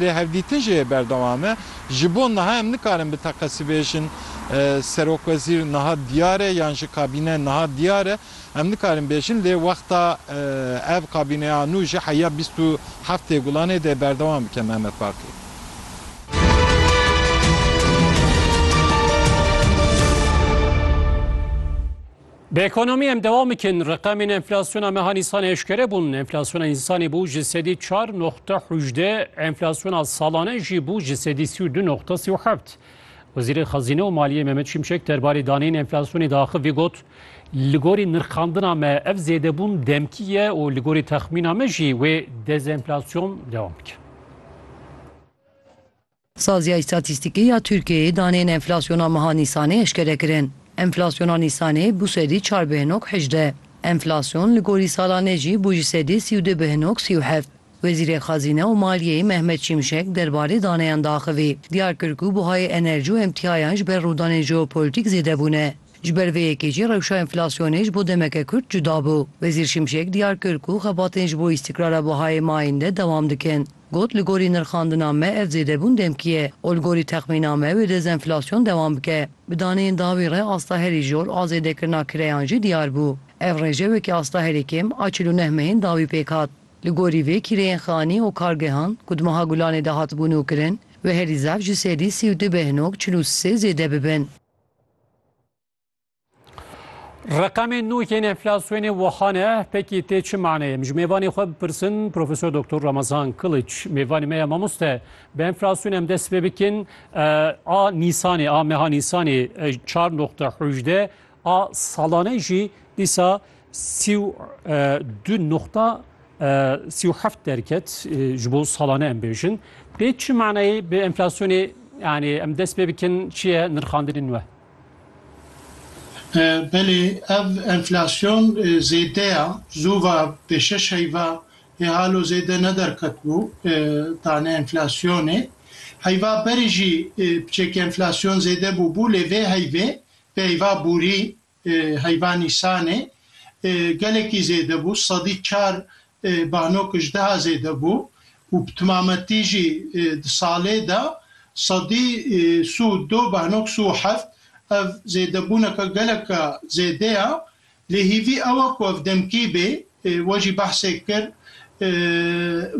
Lêhevdîtin jî yê berdewam e. Ji bo niha em nikarin bi teqesî bêjin serokwezîr niha diyar e yan jî kabîne niha diyar e. Em nikarin bêjin lê wexta ev kabîneya nû ji heya bîst û heft tê gulanê dê berdewam bike Mehmet Baqî. Bi ekonomî em dewam bikin, reqemên enflasyona meha Nîsanê eşkere bûn. Enflasyona Nîsanê bû ji sedî çar noqte hûjdeh, enflasyona salane jî bû ji sedî sî û du noqte sî û heft. Wezîrê Xezîne û Maliyê Mehmet Şimşek derbarê daneyên enflasyonê de axivî got, Li gorî nirxandina me ev zêdebûn demkî ye û li gorî texmîna me jî wê dezenflasyon dewam bike. Saziya Îstatîstîkî ya Tirkiyeyê daneyên enflasyona meha Nîsanê eşkere kirin. Enflasyona Nîsanê bû sedî çar bi hinok hejdeh. Enflasyon li gorî salanê jî bû ji sedî sî û du bi hinok sî û heft. Wezîrê Xezîne û Maliyeyê Mehmet Şimşek derbarê daneyan diaxivî, diyar kir ku buhayê enerjî û emtîayan ji ber rûdanên jeopolîtîk zêde bûne. Ji ber vê yekê jî rewşa enflasyonê ji bo demeke kurt cuda bû. Wezîr Şimşek diyar kir ku xebatên ji bo îstîkrara buhayê mayînde dewam dikin. Got, Li gorî nirxandina me ev zêdebûn demkî ye û li gorî texmîna me wê dezenflasyon dewam bike. Bi daneyên dawî re asta herî jor a zêdekirina kireyan jî diyar bû. Ev rêjewekî asta herî kêm a çil û neh mehên dawî pêk hat. Li gorî vê kîreyên xanî û kargehan ku di meha Gulanê de hatibû nûkirin wê herî zaf ji sedî sî û du beh nok çil û sê zêde bibin. Reqemê nû yên enflasyonê wiha ne pekî tê çi maneyê min ji mêvanê xwe bipirsin Profesor Doktor Ramazan Kiliç mêvanê me ya mamoste bi enflasyonê em dest pê bikin a nîsanê a meha nîsanê çar noxte hûjde a salanê jî dîsa sî û du noxta sî û heft derket ji bo salanê em bêjin tê çi maneyê bi enflasyonê yanê em dest pê bikin çi ye nirxandinên we Belê ev enflasyon zêde ya, zû va pê şeş heyva hê halo zêde ne derketibû tane enflasyonê. Heyva berê jî piçeke enflasyon zêde bûbû lê vê heyvê vê heyva bûrî heyva nîsanê gelekî zêde bû sedî çar Banok ji deha zêde bû û bi timametî jî di salê de sedî sî û du banok sî û heft. Ev zêdebûneke geleke zêde ye lê hêvî ew e ku ev demkî bê. We jî behsê kir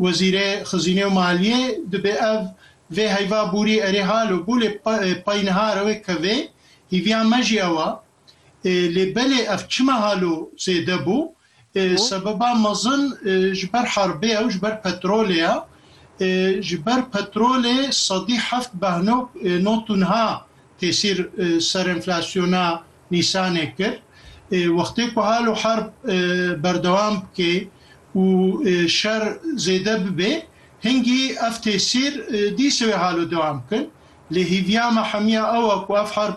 Wezîrê Xizînê û Maliyê dibê ev vê heyva bûrî erê hal û bû lê pey niha re wê kevê. Hêviya me jî ew e. Lê belê ev çima halo zêde bû? Sebeba mezin ji ber herbê ye û ji ber petrolê ye. Ji ber petrolê sedî heft behnok not û niha tesîr ser enflasyona Nîsanê kir. Wextê ku halo herb berdewam bike û şer zêde bibe hingî ev tesîr dîsê wê halo dewam bikin. Lê hêviya me hemiya ew e ku ev herb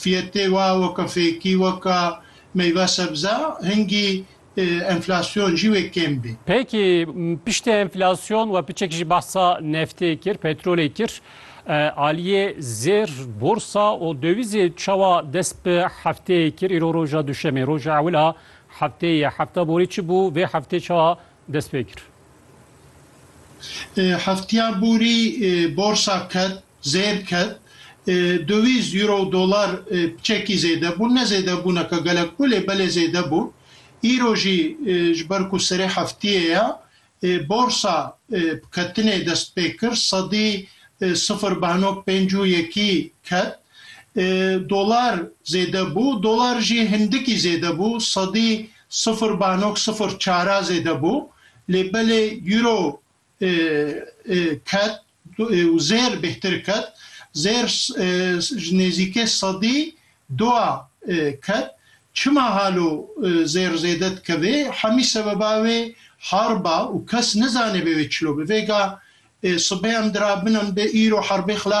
Fiyetê wa weke fêkî weke meyve sebze hingî enflasyon jî wê kêm bê. Peki piştî enflasyon we piçek jî behsa neftê kir, petrolê kir. Aliyê zêr, borsa û dowîzê çawa dest bi hefteyê kir? Îro roja duşemê, roja ewil a hefteyê ye. Hefta borî çi bû? Vê heftê çawa dest pê kir? Hefteya borî borsa ket. Zêr ket. Döwîz, Euro û Dolar çekî zêde bûn. Ne zêdebûneke gelek bû lê belê zêde bû. Îro jî ji ber ku serê heftiyê ye borsa bi ketinê dest pê kir. Sedî sifir beno pênc û yekî ket. Dolar zêde bû. Dolar jî hindikî zêde bû. Sedî sifir beno sifir çara zêde bû. Lê belê Euro ket. û zêr bêhtir ket, zêr ji nêzîkê sedî dua ket. Çima halo zêr zêde dikevê? Hemî sebeba wê herba û kes nizanê bê wê çilo bi. Vêga sibê em dirabin em bi îro herbê xilas